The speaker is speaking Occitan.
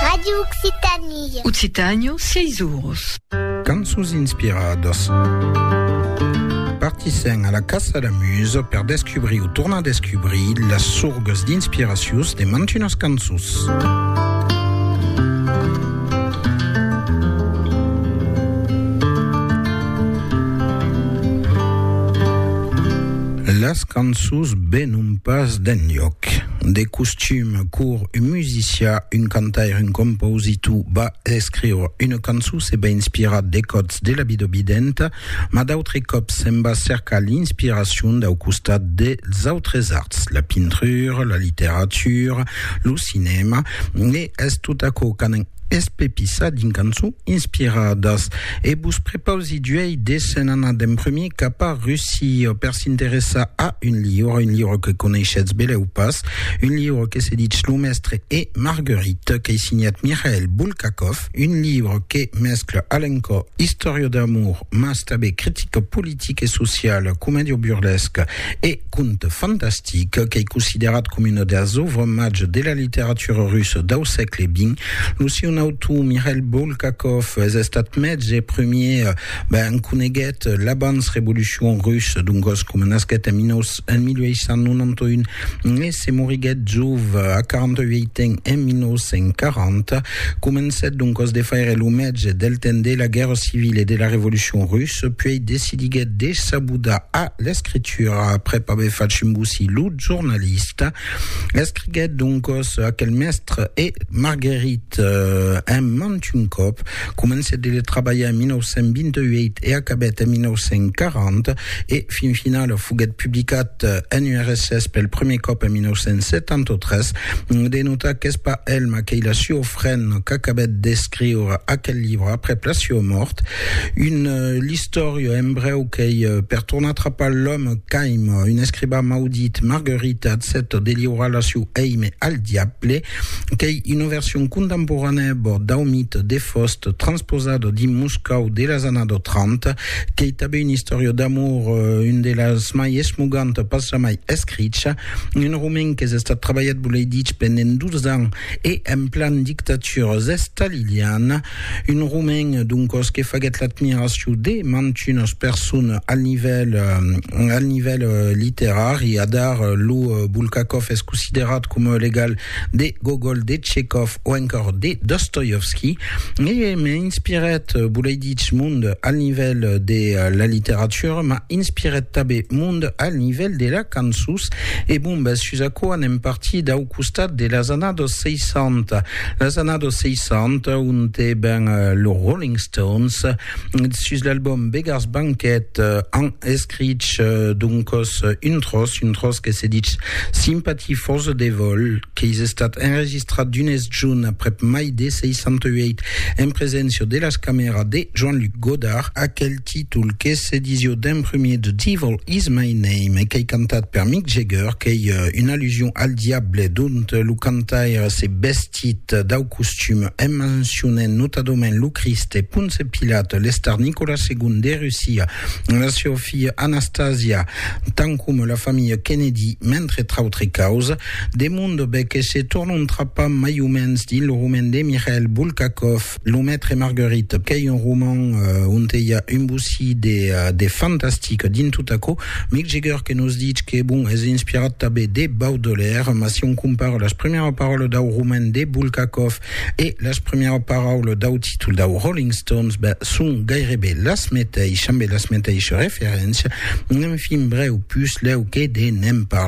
Radio Occitanie. Occitània, 6 oros. Cançons inspiradas. Partissèm a la Caça la Muse per descubrir o tornar descubrir las sorgas d'inspiracions de mantunas cançons. Las cançons venon pas d'enlhòc. De costum, quor un musicià, un cantaire, un compositor va escriure una cançon se va inspirar de còts de la vida videnta, mas d'autres còps se'n va cercar l'inspiracion dau costat dels autres arts, la pintura, la literatura, lo cinèma, e es tot aquò qu'an Espepissat dins cançons inspiradas e vos prepausi d'uèi de se'n anar d'en prumir cap a Russia per s'interessar a un liure, un liure que coneishetz belèu pas, un liure que se ditz Lo Mèstre e Marguerite, qu'ei signat Mikhail Bulgakov, un liure que mescla a l'encò istòria d'amor mas tanben critica politica e sociala, comèdia burlesca e. Conte fantastic qu'ei considerat coma una deas òuvres mages de la literatura russa dau sègle xx. Lo sieu autor, Mikhail Bulgakov, es estat mètz e premier ben coneguet l'abans revolucion russa, doncas coma nasquèt en 1891 e se moriguèt jove a 48 ans en 1940, comencèt doncas de faire lo mètge del temps de la guèrra civila e de la revolucion russa, puèi decidiguèt de s'abodar a l'escritura. literatura après aver facit bossir lo jornalista, escriguèt doncas aquel mèstre e Marguerite eh, en mant un còp, comencèt de le trabalhar en 1928 e acabèt en 1940 e fin finala foguèt publicat en URSS pel prumèr còp en 1973. De notar qu'es pas Elma qu'ei la sua frena qu'acabèt d'escriure aquel libre après la sua mòrt. Un l'istòria en brèu qu'ei per tornar atrapar l'òme Caim, un escribà maudit, Marguerite accepta de liurar la siu èime al diable, qu'ei una version contemporanèa bòrd dau mite de Faust transposada dins Moscòu de las annadas 30, qu'ei tanben una istòria d'amor, una de las mai esmogantas pas jamai escricha, un romen qu'es estat trabalhat, volei dich, pendent 12 ans e en plan dictatura staliliana. Un romain, doncos, que faguèt l'admiracion de mantunas personas al nivèl, al nivèl literari. Adar, lo Bulgakov es considerat coma o l'egal de Gogol, de Tchekhov o encòr de Dostoievski. E m'inspirèt, volei dich, mond al nivèl de la literatura, m'a inspirèt tanben mond al nivèl de la cançons. E bombes, sus aquò anem partir dau costat de las annadas 60. Las annados 60, onte ben los Rolling Stones, sus l'album Beggars Banquet, an escrich doncos un tròç, un tròç que se ditz Sympathy for the Devil, qu'eis estat enregistrat d'unes junh aprèp mai de 68, en preséncia de las camèras de Jean-Luc Godard. Aquel títol que se disió d'en prumèr The Devil Is My Name e qu'ei cantat per Mick Jagger, qu'ei una allusion al diable, dont lo cantaire s'es vestit dau costum en mencionent notadament lo Crist e Ponce Pilat, l'estar Nicolas segon de Russia, la siá filha Anastasia, tant coma la familha Kennedy, mentre trautre causes. De Mondobé que se tornontrapa mai o mens dins lo roman de Mikhail Bulgakov. Lo Maitre Marguerite, qu'ei un roman onte i a un bocí de fantastic dins tot aquò. Mick Jagger que nos ditz que, bon, es inspirat tanben de Baudelaire, mas si on compara las primièras paraulas dau roman de Bulgakov e las primièras paraulas dau títol dau Rolling Stones, ben, son gaireben las meteishas, ambe las meteishas referéncias. Enfin, brèu, puslèu que de ne'n parlar.